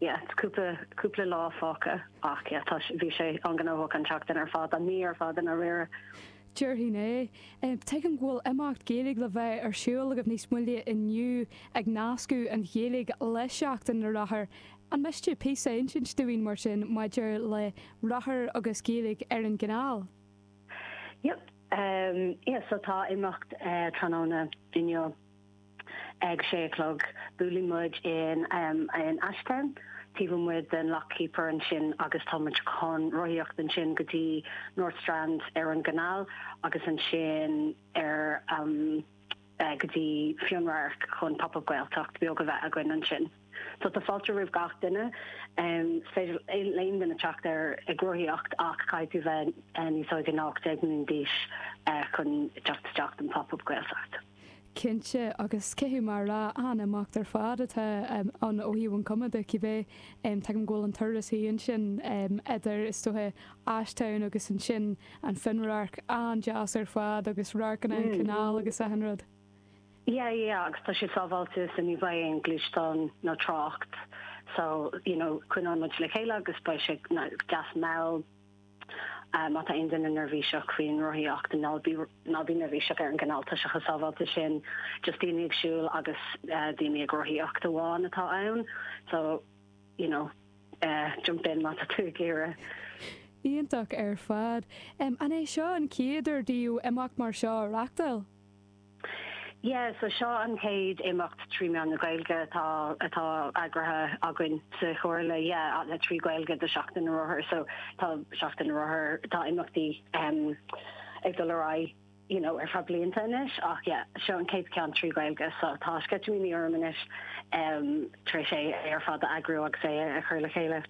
Yeah it's cúpla cúpla lá fágtha ach yeah tá bhí sé an-ghnóthach an tseachtain ar fad, an mhí ar fad i ndáiríre. Déarfainn é. Tuigim go bhfuil imeacht Gaeilge le bheith ar siúl agaibh níos moille inniu ag nascadh na Gaeilge le seachtain na rothar. An miste píosa insint dúinn mar sin maidir le rothair agus Gaeilge ar an gcanáil? Yep. Yeah so tá imeacht tráthnóna inniu. Ag a sé a chlog, buaileann muid in Ashtown, taobh amuigh den Lock Keeper ansin agus tá muid chun rothaíocht ansin go dtí North Strand ar an gcanáil agus ansin ar go dtí Fionnradharc chun Pop Up Gaeltacht beag a bheith againn ansin. So tá fáilte roimh gach duine. Is féidir aon duine teacht ar ag rothaíocht ach caithfidh tú bheith níos ó ná 18 mbliana d'aois chun teacht isteach don Pop Up Gaeltacht. cinnte agus caithfidh mé a rá an-imeacht ar fad atá ann ó thaobh an chuma de cibé tuigim go bhfuil an turas thíos ansin idir is dócha Ashtown agus ansin Fionnradharc an-deas ar fad agus radharc ar an chanáil agus achan rud. Yeah yeah agus tá sé sábháilte so ní bheidh aon ghluaisteán nó trácht so you know coinníonn muid le chéile agus beidh sé deas mall Má tá aon duine neirbhíseach faoin rothaíocht, ná bí neirbhíseach ar an gcanáil tá sé an-sábháilte ansin, just daoine ag siúl agus daoine ag rothaíocht amháin atá ann, so you know jump in má tá tú ag iarraidh. Iontach ar fad. An é seo an chéad uair daoibh imeacht mar seo a reachtáil? Yeah, so seo an chéad imeacht trí mheán na Gaeilge atá atá eagraithe againn sa Chomhairle, yeah, le trí Ghaeilge do Seachtain na Rothar, so tá Seachtain na Rothar, tá imeachtaí um ag dul ar aghaidh you know ar feadh blianta anois ach yeah, seo an chéad ceann trí Ghaeilge so tá sceitimíní orm anois um tar éis é ar fad a eagrú agus é a chur le chéile.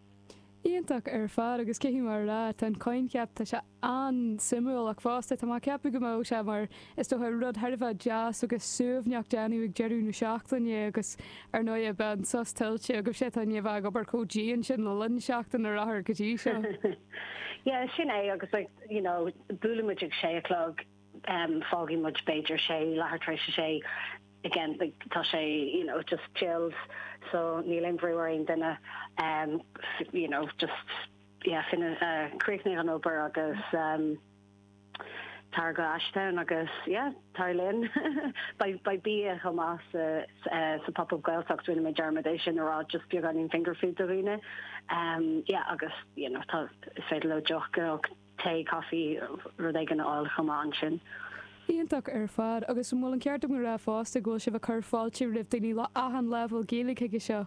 Iontach ar fad agus caithfidh mé a rá tá an coincheap tá sé an-suimiúil ach fosta tá mé ag ceapadh go mbeadh sé mar is dócha rud thar a bheith deas agus suaimhneach le déanamh ag deireadh na seachtaine agus ar ndóigh beidh an sos tuillte agaibh sibh tar éis a bheith ag obair chomh dian sin le linn Seachtain na Rothar go dtí seo. Yeah sin é agus like you know buaileann muid ag sé a chlog em fágfaidh muid b'fhéidir sé leathuair tar éis a sé again like tá sé you know just chilled so níl aon bhrú ar aon duine em you know just Yeah fan críochnaigh an obair agus tar go Ashtown agus yeah tar linn beidh bia chomh maith sa sa pop-up Gaeltacht rinne mé dearmad é sin a rá just beagáinín finger food do dhaoine yeah agus you know tá is féidir leo deoch nó tae coffee rud éigin a fháil chomh maith ansin. Iontach ar fad agus an bhfuil an ceart agam a rá fosta go bhfuil sibh ag cur fáilte roimh daoine le achan leibhéal Gaeilge chuige seo?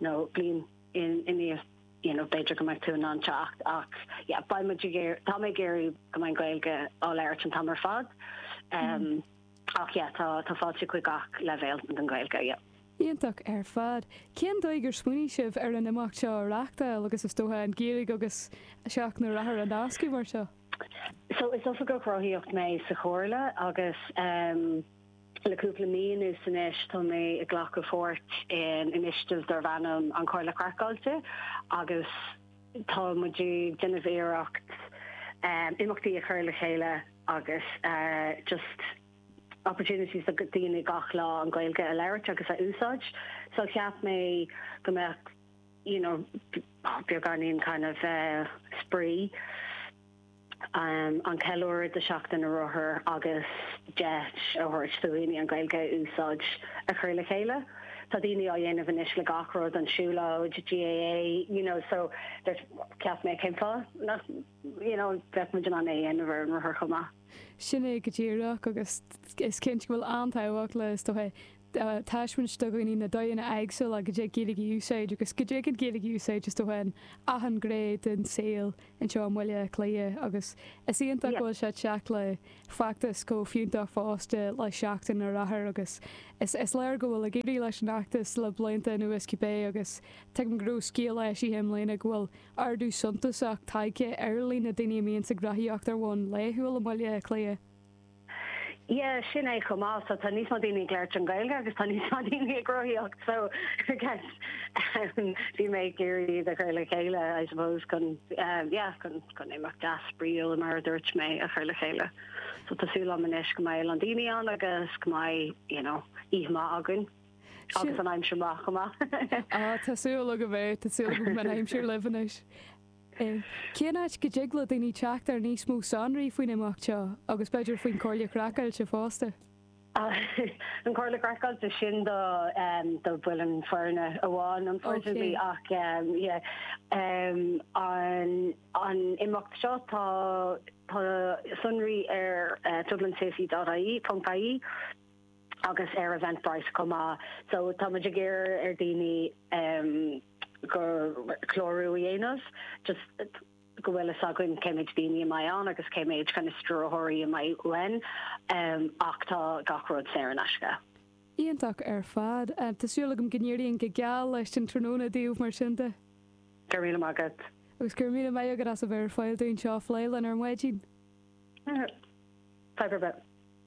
nó bliain i ndiaidh you know b'fhéidir go mbeidh tú in ann teacht ach yeah beidh muid, tá mé ag iarraidh go mbeidh an Gaeilge á labhairt an t-am ar fad umm ach yeah tá fáilte chuig gach leibhéal don Ghaeilge yeah. Iontach ar fad. Cén dóigh gur smaoinigh sibh ar an imeacht seo a reachtáil agus is dóiche an Ghaeilge agus Seachtain na Rothar a nascadh mar seo? So is oifigeach rothaíocht mé sa Chomhairle agus umm. Le cúpla mí anuas anois tá mé ag glacadh páirt in initiative darb ainm An Chomhairle Craiceáilte agus tá muid ag déanamh iarracht imeachtaí a chur le chéile agus just opportunities do daoine gach lá an Ghaeilge a labhairt agus a úsáid. So cheap mé go mbeadh you know beagáinín kind of spraoi. an ceiliúradh do Sheachtain na Rothar agus deis a thabhairt do dhaoine an Ghaeilge a úsáid a chur le chéile. Tá daoine á dhéanamh anois le gach rud, an siúlóid, GAA, you know so dúirt cheap mé cén fáth nach you know bheadh muid in ann é a dhéanamh ar an rothar chomh maith. Sin é go díreach agus is cinnte go bhfuil an-tábhacht le is dócha, taispeáint do dhaoine na dóigheanna éagsúla go dtig Gaeilge a úsáid agus go dtig an Ghaeilge a úsáid is dócha in achan ghné den saol anseo i mBaile Átha Cliath agus is iontach go bhfuil sé ag teacht le feachtas chomh fiúntach fosta le Seachtain na Rothar agus is léir go bhfuil ag éirí leis an fheachtas le blianta anuas cibé agus tuigim go raibh scéal á eisiúint i mbliana go bhfuil ardú suntasach tagtha ar líon na daoine a mbíonns ag rothaíocht ar bhonn laethúil i mBaile Átha Cliath. Yeah, sin é chomh maith. So tá níos mó daoine ag labhairt an Ghaeilge agus tá níos mó daoine ag rothaíocht. So I guess um bhí mé ag iarraidh iad a chur le chéile I suppose chun um yeah chun chun imeacht spraíúil mar a dúirt mé a chur le chéile. So tá súil agam anois go mbeidh a lán daoine ann agus go mbeidh you know oíche maith againn. Agus an aimsir maith chomh maith. Ah tá súil agam é, tá súil agam go mbeidh an aimsir libh anois. Cén áit go dtig le daoine teacht ar níos mó sonraí faoin imeacht seo agus b'fhéidir faoin Chomhairle Craiceáilte fosta? An Chomhairle Craiceáilte, sin do bhaill an fhoireann amháin unfortunately ach yeah an imeacht seo tá sonraí ar dublincity.ie agus ar Eventbrite chomh maith so tá muid ag iarraidh ar daoine just clárú a dhéanamh, just go bhfuil fhios againn cé méid daoine a mbeidh ann agus cé méid kind of stiúrthóirí a mbeidh uainn ach tá gach rud saor in aisce. Iontach ar fad. Tá súil agam go n-éiríonn go geal leis an tráthnóna daoibh mar sin de. Go raibh míle maith agat. Agus go raibh míle maith agat as a bheith ar fáil dúinn seo a phlé linn ar maidin. Bye, Bye, bye, bye.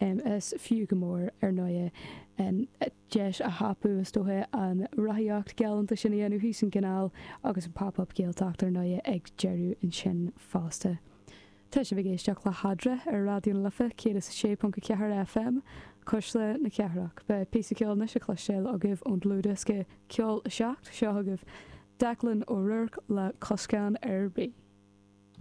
Is fiú go mór, ar ndóigh, deis a thapú, is dócha, an rothaíocht ghalánta sin a dhéanamh thíos an chanáil agus an Pop Up Gaeltacht, ar ndóigh, ag deireadh ansin fosta. Tá sibh ag éisteacht le hAdra ar Raidió na Life 106.4 FM, Cuisle na Cathrach. Beidh píosa ceoil anois le cloistéáil agaibh ón dlúthdhiosca Ceol 7. Seo chugaibh Declan O'Rourke le Coscáin ar Bith.